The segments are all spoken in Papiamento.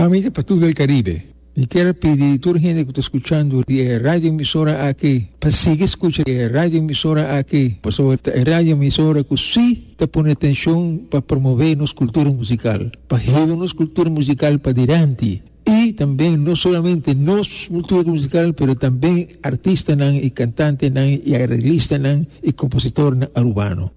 Famia pa tur el Caribe. Mi kier pidi tur hende cu ta scuchando di e radioemisora aki pa sigui scucha e radioemisora aki pasobra ta e radioemisora cu si ta pone atencion pa promove nos cultura musical, pa hiba nos cultura musical padilanti y tambe no solamente nos cultura musical pero tambe artistanan y cantantenan y arreglistanan y compositornan Arubano.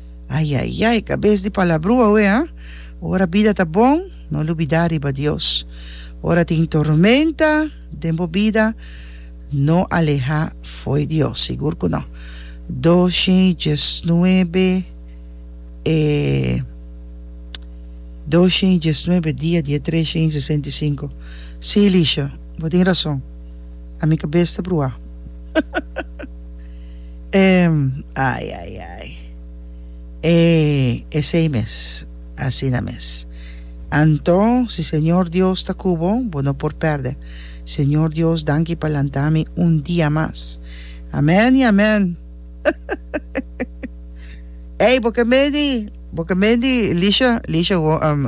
Ai ai ai, kabes di palabrua awe ha. Ora bida ta bon, no lubidá riba Dios. Ora tin tormenta den bo bida, no alehá fo'i Dios, sigur ku no. Doce djes nuebe e doce djes nuebe dia di e treshe i sesenta i sinku. Sí, Lisha, bo tin rason. Ami kabes ta bruá. Ehm, ai, ai, ai. E, esei mes. Asina mes. Anto, si Señor Dios ta cu bo, bo no por perde. Señor Dios, danki pa lanta mi un dia mas. Amen y amen. Ey, bo ke medi, bo ke medi, Lisha, Lisha, wo, ehm,